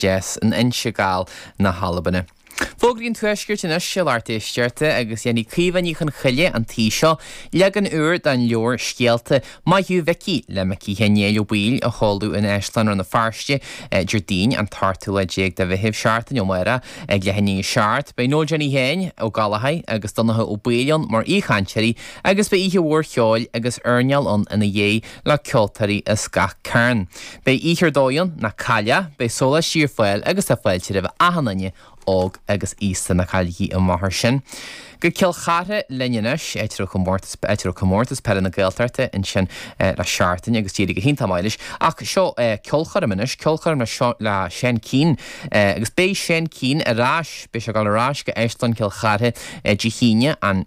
deas in Inse Gall na hAlbana. Fógraí an Tuaiscirt anois a lucht éisteachta agus déanfaidh Caoimhe Ní Chonchoille an tí seo leagan úr den leabhar Scéalta Maith Thú a Mhicí le Micí Sheáin Néill Ó Baoill a sheoladh in Áislann Rann na Feirste Déardaoin an t-ochtú lá déag de Mheitheamh seachtain ó amárach ag leath i ndiaidh a seacht. Beidh Noel Jenny Sheáin Ó Gallchóir agus Donncha Ó Baoill ann mar aoichainteoirí agus beidh oíche mhór cheoil agus airneáil ann ina dhiaidh. le ceoltóirí as gach cearn. Beidh oíche ar dóigh ann ná caill é, beidh sólaistí ar fáil agus tá fáilte roimh achan duine, óg agus aosta, ná cailligí amach air sin. Go Cill Chartha linn anois, áit a raibh comórtas peile na Gaeltachta ansin le seachtain agus d'éirigh go hiontach maith leis. Ach seo ceolchoirm anois, ceolchoirm le, le Seán Keane agus beidh Seán Keane ar ais, beidh sé ag dul ar ais go Áislann Chill Chartha Dé hAoine, an.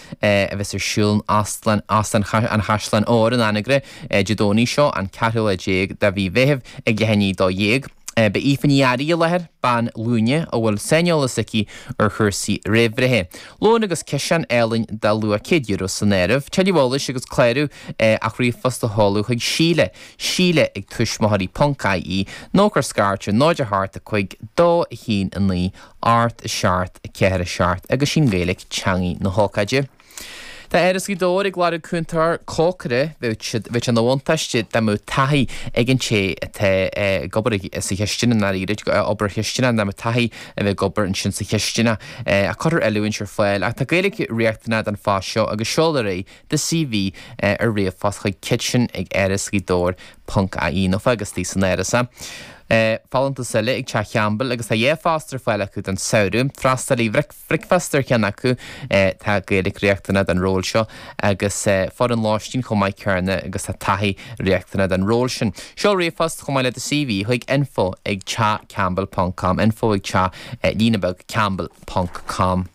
a bheas ar siúl in Óstlann an Chaisleáin Óir in Anagaire Dé Domhnaigh seo, an ceathrú lá déag de mhí Mheithimh, ag leath i ndiaidh a dó dhéag. Beidh Aoife Ní Fhearraigh i láthair, bean ghlúine a bhfuil saineolas aici ar chúrsaí réamhbhreithe. Lón agus ciseán álainn dá luach €100 san áireamh. Tuilleadh eolais agus clárú ach ríomhphost a sheoladh chuig Síle, Síle ag tuismitheoirí ponc ie, nó cuir scairt ar 0 8 5 2 1 9 Ocht a seacht, a ceathair a seacht, agus is í an Ghaeilic teangaidh na hócáide. Tá Áras Ghaoth Dobhair ag lorg cúntóir cócaire, bheadh sé ina bhuntáiste dá mbeadh taithí ag an té atá ag obair sa chisteanach, i ndáiríre, obair chisteanach, dá mbeadh taithí a bheith ag obair ansin sa chisteanach. Cuirfear oiliúint ar fáil ach tá Gaeilic riachtanach don phost seo agus seol ar aghaidh do CV ar ríomhphost chuig kitchen ag Áras Ghaoth Dobhair ponc ie nó fág istigh san Áras é. Folúntas eile ag Teach Campbell agus tá dhá phost ar fáil acu don samhradh. Freastalaí bricfeasta ar cheann acu. Tá Gaeilic riachtanach don ról seo agus foireann lóistín chomh maith céanna agus tá taithí riachtanach don ról sin. Seol ríomhphost chomh maith le do CV chuig info ag teachcampbell ponc com info ag teach, líne bheag, campbell ponc com.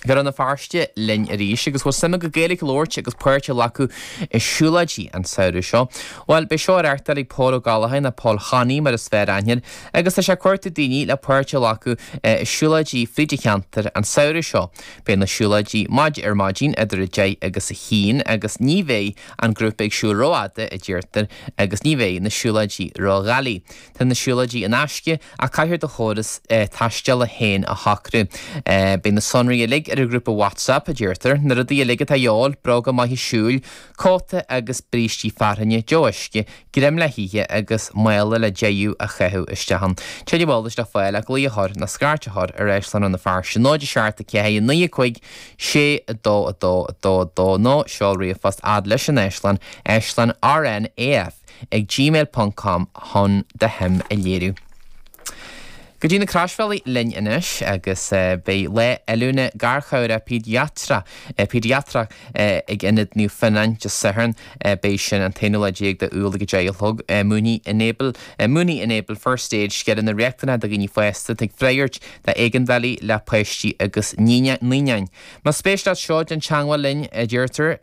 Go Rann na Feirste linn arís agus bhfuil suim agat Gaeilic a labhairt agus páirt a ghlacadh i siúlóidí an samhradh seo. Bhuel, beidh seo á reáchtáil ag Pól Ó Gallchóir, nó Pól Haney mar is fearr aithne air, agus tá sé ag cuartú daoine le páirt a ghlacadh i siúlóidí fríd an cheantar an samhradh seo. Beidh na siúlóidí maidin ar maidin idir a deich agus a haon agus ní bheidh an grúpa ag siúl ró-fhada a deirtear agus ní bheidh na siúlóidí ró-dhoiligh. Tá na siúlóidí in aisce ach caithfear do chóras taisteala féin a shocrú. Beidh na sonraí uilig ar an ghrúpa WhatsApp, a deirtear. Na rudaí uilig atá a dhíobháil, bróga maithe siúil, cóta agus brístí fearthainne, deoch uisce, greim le hithe agus mála le deisiú a chaitheamh isteach ann. Tuilleadh eolais le fáil ach glaoch a chur nó scairt a chur ar Áislann Rann na Feirste náid a seacht a ceathair a naoi a cúig sé a dó a dó a dó a dó nó seol ríomhphost fhad leis an Áislann, Áislann RNAF. ag gmail ponc com chun do shuim a léiriú. Go dtí na Croisbhealaí linn anois agus beidh lá oiliúna garchabhaire pediatra, pédiatrique ag Ionad Naomh Fionnán Dé Sathairn beag seo an t-aonú lá déag d'Iúil ag a deich a chlog. Múineann Enable, múineann Enable First Aid scileanna riachtanacha do dhaoine fásta ag freagairt d'éigeandálaí le páistí agus naoináin. Más spéis leat seo déan teagmháil linn, deirtear,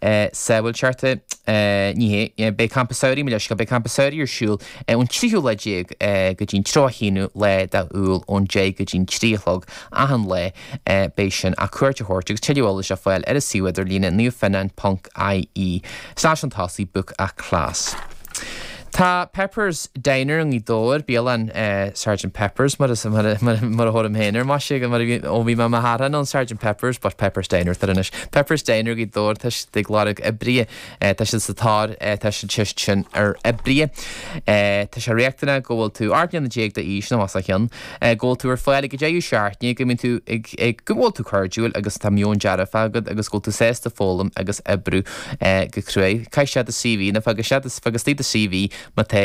Sea, bhuel, ceart é. Ní hé. Beidh Campa Samhraidh, mo leithscéal, beidh Campa Samhraidh ar siúl ón tríú lá déag go dtí'n tríochadú haonú lá d'Iúil, ón deich go dtí'n trí a chlog, achan lá. Beidh sin ach cuairt a thabhairt agus tuilleadh eolais a fháil ar an suíomh idirlíne, naomhfhionnáin ponc IE, slash an tosaí, book a class. Tá Pepper's Diner i nGaoth Dobhair, bialann Sergeant Pepper's mar a thugaim féin air, más ea, mar ó bhí mé i mo ghasúr anonn, Sergeant Pepper's, but Pepper's Diner atá air anois. Pepper's Diner Gaoth Dobhair, tá siad ag lorg oibrithe, tá siad sa tóir, tá siad cheist sin ar oibrithe. Tá sé riachtanach go bhfuil tú 18 mbliana déag d'aois nó os a chionn. Go bhfuil tú ar fáil ag an deireadh seachtaine, go mbíonn tú ag, go bhfuil tú cairdiúil agus tá meon dearfach agat agus go bhfuil tú sásta foghlaim agus oibriú go crua. Caith isteach do CV, nó fág isteach do, fág istigh do CV má tá